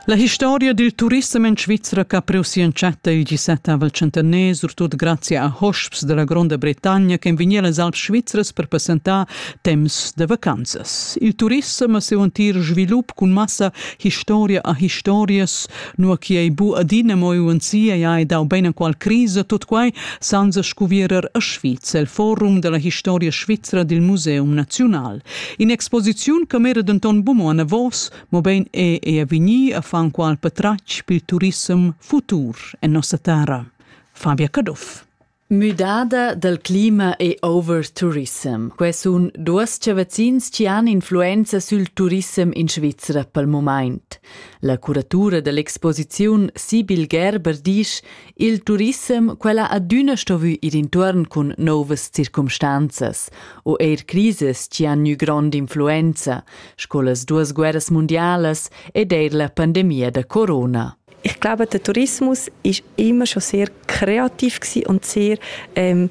La historia dil turissem en Svizra che ha priu si entschatta il 17 centener, surtut grazie a hosps dalla Gronda Bretagna che vegniva las Alps svizras per passentar temps da vacanzas. Il turissem ha siu entir svilup cun massa historia a historias, nua che ei bu adina mo uansia e hai dau bein qual crisa, tut quei senza scuvierer a Sviz el forum dalla historia svizra dil Museum Naziunal. In'exposiziun che mera denton buca anavos, mobein è ei a vegnir a far qual patratg pil turissem futur en nossa terra. Fabia Caduff. Müdada dal clima e over tourism. Quai sun duos chavazzins chi han influenza sül turissem in Svizra pel mumaint. La curatura da l'exposiziun Sibyl Gerber disch Il turissem quella adüna stovü ir intuorn cun nouvas circumstanzas u eir crises chi han gnü grond'influenza, sco las duas guerras mundialas ed eir la pandemia da corona. Ich glaube, der Tourismus ist immer schon sehr kreativ und sehr ähm,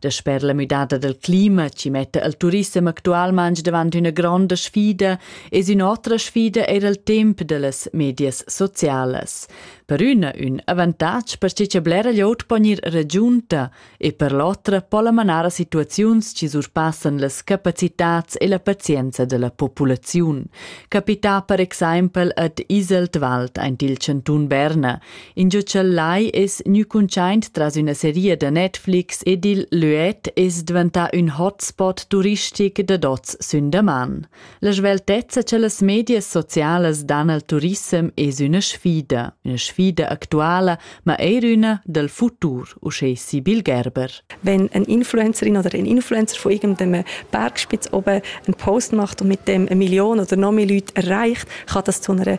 Dasper la müdada dal clima chi metta il turissem actualmaing davant üna gronda sfida es ün'otra sfida eir il temp da las medias socialas. Per üna ün avantatg perche cha blera glieud po gnir ragiunta e per l'otra po la manar a situaziuns chi surpassan las capacitats e la pazienza da la populaziun. Capità per exaimpel ad Iseltwald aint il chantun Berna, Ingio ch'el lai es gnü cuntschaint tras üna seria da Netflix ed il Luet es dvantà ün hotspot turistic dad hoz sün daman. La sveltezza cha las medias socialas dan al turissem es üna sfida, üna sfida actuala, ma eir üna dal futur, uschè Sibyl Gerber. Wenn eine Influencerin oder ein Influencer von irgendeinem Bergspitz oben einen Post macht und mit dem eine Million oder noch mehr Leute erreicht, kann das zu einer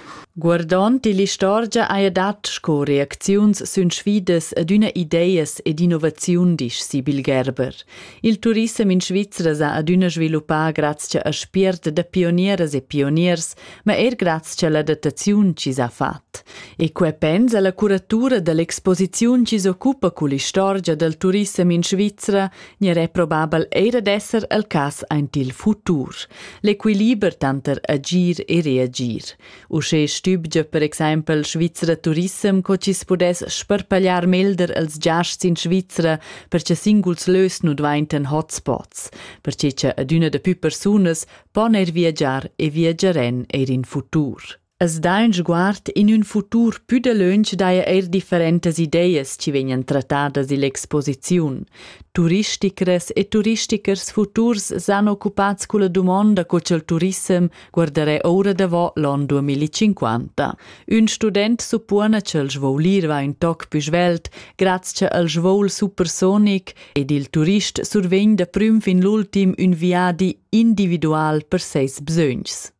Guardond ill'istorgia haja dat sco reacziuns sün sfidas ad üna ideas ed innovaziun, disch Sibyl Gerber. Il turissem in Svizra s'ha adüna sviluppà grazcha a spiert da pionieras e pioniers, ma eir grazcha alla adattaziun chi s'ha fat. E que pens alla curatura da l'exposiziun chi s'occupa cull'istorgia dal turissem in Svizra Nier è probabel eir ad esser el cas aint il futur. L'equiliber tanter agir e reagir. Uschè stübgia per exaimpel Svizra Turissem co chi's pudess sparpagliar melder els giasts in Svizra per che singuls lös nu dvaintan hotspots, perche cha adüna da pü persunas pon eir viagiar e viagiarèn eir in futur. As dà ün sguard in ün futur pü dalöntsch daja eir differentas ideas chi vegnan trattadas ill'exposiziun. Turisticras e turistichers futurs s'han occupats culla dumonda co cha'l turissem guardarà oura davo l'on 2050. Ün student suppona cha'l svolir va ün toc pü svelt graz cha al svol supersonic ed il turist survegn da prüm fin l'ultim ün viadi individual per seis bsögns.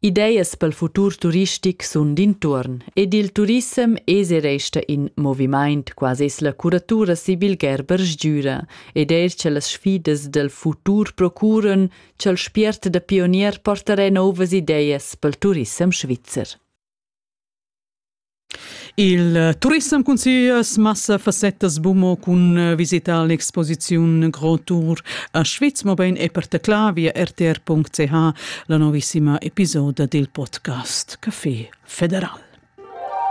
Ideas pel futur turistic sun d'intuorn ed il turissem es e resta in movimaint, quasi es la curatura Sibyl Gerber sgüra ed eir cha las sfidas dal futur procuran cha'l spiert da pionier portarà novas ideas pel turissem svizzer. Il turissem cun sias massa fassettas bumo cun eh, visita all'exposiziun Grand Tour a Schwyz, mobein e per tecla via rtr.ch la novissima episoda dil podcast Café Federal.